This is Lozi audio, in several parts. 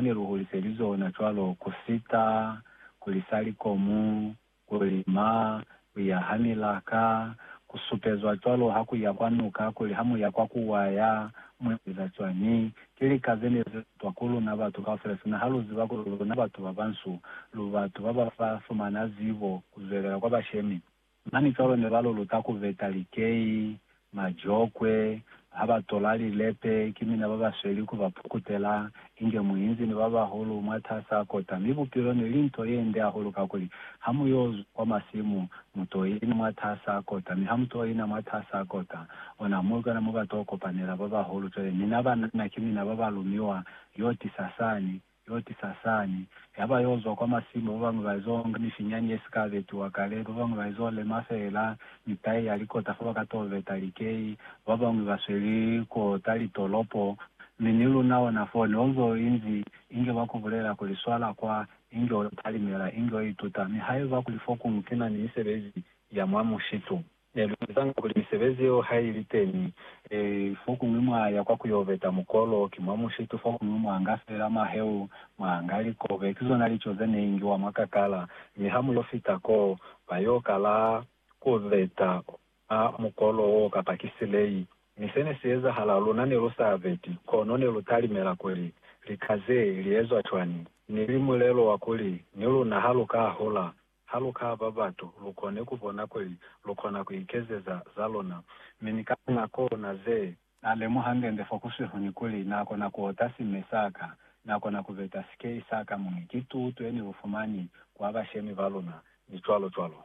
ne lu hulise li zona cwalo ku sita, ku lisa likomu, ku lima, ku ya ha milaka, ku supezwa cwalo ha ku ya kwa nuka kuli ha mu ya kwa ku waya mu eza cwañi. Ki lika ze ne ze utwa ku luna batu kaufela, sina ha lu ziba kuli luna batu ba bansu, lu batu ba ba fa fumana zibo ku zwelela kwa bashemi. Mani cwalo ne ba luluta ku veta likei, majokwe, ha ba tola lilepe, ki mina ba ba sweli ku ba pukutela, inge muinzi ni ba bahulu mwatas'a kota. Mi bupilo ne li nto ye nde hahulu kakuli, ha mu y'o zwa kwa masimu, mu t'o ina mwatas'a kota, mi ha mu t'o ina mwatas'a kota, ona mo kona mo ba t'o kopanela ba bahulu. Cwale mina banana ki mina ba ba lumiwa y'o tisa sani. Yo tisa sani. Yaba yo zwa kwa masimu, ba bañwi ba ezo nga mifinyani ye si ka betiwa kale, ba bañwi ba ezo lema fela mitai ya likota fa ba ka to beta likei, ba bañwi ba sweli ko ta litolopo. Mi ni luna ona fo, ne onzo inzi, inge ba ku bulela kuli, Swala kwa, inge o talimela, inge o ituta. Mi haiba kuli fokuñwi ki na ni misebezi ya mwa mushitu, Ne lu ezanga kuli misebezi yeo ha i li teñi. Ee, fokuñwi mwa ya kwa ku yo beta mukolo, ki mwa mushitu, fokuñwi mwa nga feela maheu, mwa nga likobe. Ki zona lico ze ne ingiwa mwa kakala. Mi ha mu yo fita koo, ba yo kala ku beta mwa mukolo woo kapa ki silei. Mi se ne si ezahala, luna ne lu sa beti, kono ne lu talimela kuli, Lika ze li ezwa cwani? Ni li mulelo wa kuli, Ni luna ha lu ka hula, Ha lu ka ba batu, lu kone ku bona kuli lu kona ku ikezeza za luna. Mi ni ka linako na ze. Na lemuha ngende fo kusihu ni kuli, Na kona ku ota sime sa ka. Na kona ku beta sikei sa ka mwi ki tutu ye ni lu fumani kwa bashemi ba luna, ni cwalo cwalo.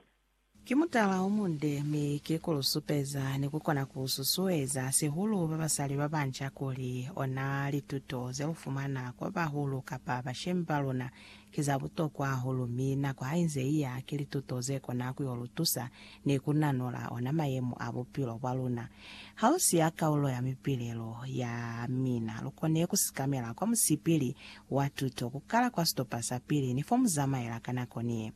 Ki mutala o munde, mi ki ku lu supeza ni ku kona ku susueza sihulu babasali ba banca kuli ona lituto ze lu fumana kwa bahulu kapa bashemi ba luna ki za butokwa hahulu mi nako ha inze i ya, ki lituto ze kona ku yo lu tusa ni ku nanola ona mayemo a bupilo bwa luna. Ha lu siya kaulo ya mipilelo ya mina, lu kone ku sikamela kwa musipili wa tuto, ku kala kwa sitopa sa pili ni fo mu zamaela ka nako ni ye.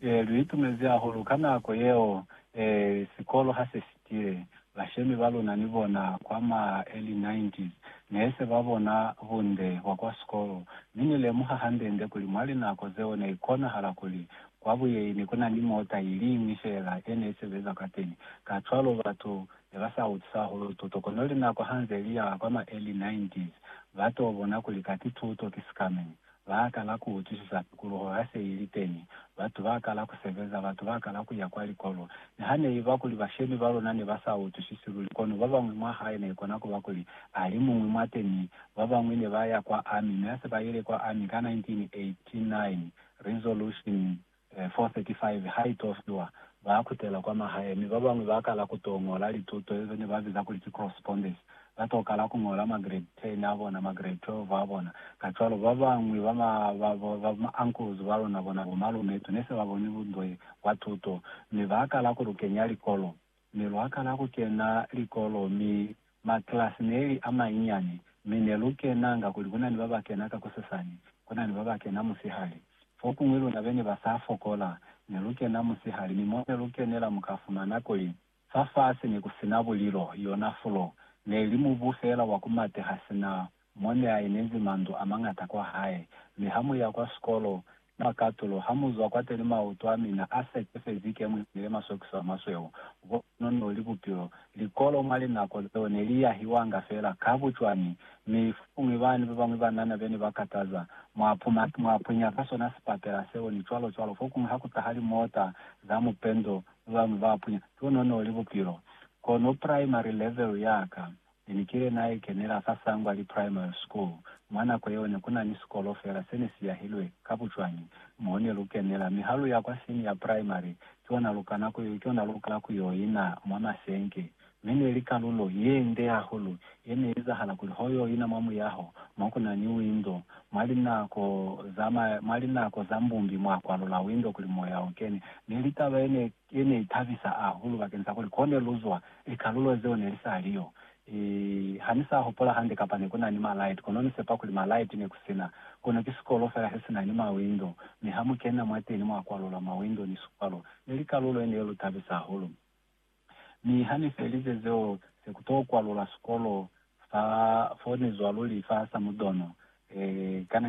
Ee, lu itumezi hahulu ka nako yeo. Ee, sikolo ha se si. Ki bashemi ba luna ni bona kwa ma early 90s ne se ba bona bunde bwa kwa sikolo, mi ni lemuha hande-nde kuli mwa linako zeo ne ikonahala kuli kwa buyeini ku na ni mota i liñwi fela ye ne i sebeza kwateni. Kacwalo batu ne ba sa utisa hahulu tuto, kono linako ha nze li ya kwa ma early 90s, ba t'o bona kuli kati tuto ki sikamenyi. Ba kala ku utwisisa tukuluho ha se i li teñi. Batu ba kala ku sebeza, batu ba kala ku ya kwa likolo. Niha ne i ba kuli bashemi ba luna ne ba sa utwisisi luli, kono ba bañwi mwa hae ne i kona ku ba kuli a li muñwi mwa teñi. Ba bañwi ne ba ya kwa Army, mi ha se ba ile kwa Army ka 1989, Resolution 4:35, Ha i to fiwa, ba kutela kwa mahae, mi ba bañwi ba kala ku to ñola lituto ezo ne ba biza kuli ki correspondence. Ba to kala ku ñola ma grade 10 a bona, ma grade 12 a bona. Kacwalo, ba bañwi ba ma, ba, ba ma uncles ba luna, bona bo malume, tu ne se ba boni bundoe bwa tuto, mi ba kala ku lu kenya likolo. Mi lwa kala ku kena likolo, mi maklasi neli a manyinyani, mi ne lu kenanga kuli ku na ni ba ba kena ka kusesani, ku na ni ba ba kena musihali. Fokuñwi luna be ne ba sa fokola, ne lu kena musihali, mi mo ne lu kenela mu ka fumana kuli fafasi ne ku sina bulilo, yona fulo, ne li mubu fela wa ku mateha sina mo ne a inezi mandu a mañata kwa hae. Mi ha mu ya kwa sikolo, mwa katulo, ha mu zwa kwateni mautu a mina a sekefezi ke mu inile masokiso a masweu. Bo kono no li bupilo. Likolo mwa linako zeo ne li yahiwanga fela ka bucwani, mi fokuñwi bani babañwi banana be ne ba kataza, mwa puma, mwa pwinya ka sona sipatela seo, ni cwalo cwalo. Fokuñwi ha ku taha limota za mupendo, babañwi ba pwinya. Bo kono no li bupilo. Kono primary level ya ka, Ne ni kile na i kenela fa Sangwali Primary School. Mwa nako yeo ne ku na ni sikolo fela se ne si yahilwe ka bucwañi mo ne lu kenela, mi ha lu ya kwa Senior Primary ki ona lu kana ku, ki ona lu kala ku yo ina mwa masenke. Mi ne li kalulo ye nde hahulu ye ne izahala kuli ho yo ina mwa muyaho mo ku na ni windo. Mwa linako za, mwa linako za mbumbi mwa kwalula windo kuli moya u kene. Ne li taba ye ne. Ye ne itabisa hahulu bakeng sa kuli kone luzwa likalulo zeo ne lisaliyo. I, ha ni sa hupola hande kapa ne kuna ni malaiti, kono ni sepa kuli malaiti ne kusina, kono ki sikolo fela se sina ni mawindo, mi ha mukena mwateni mwa kwalula mawindo ni sikwalo. Ne li kalulo ye ne lutabisa hahulu. Mi ha ni felize zeo, se ku to kwalula sikolo fa, fo ni zwa luli fa Samudono. E, kana nge.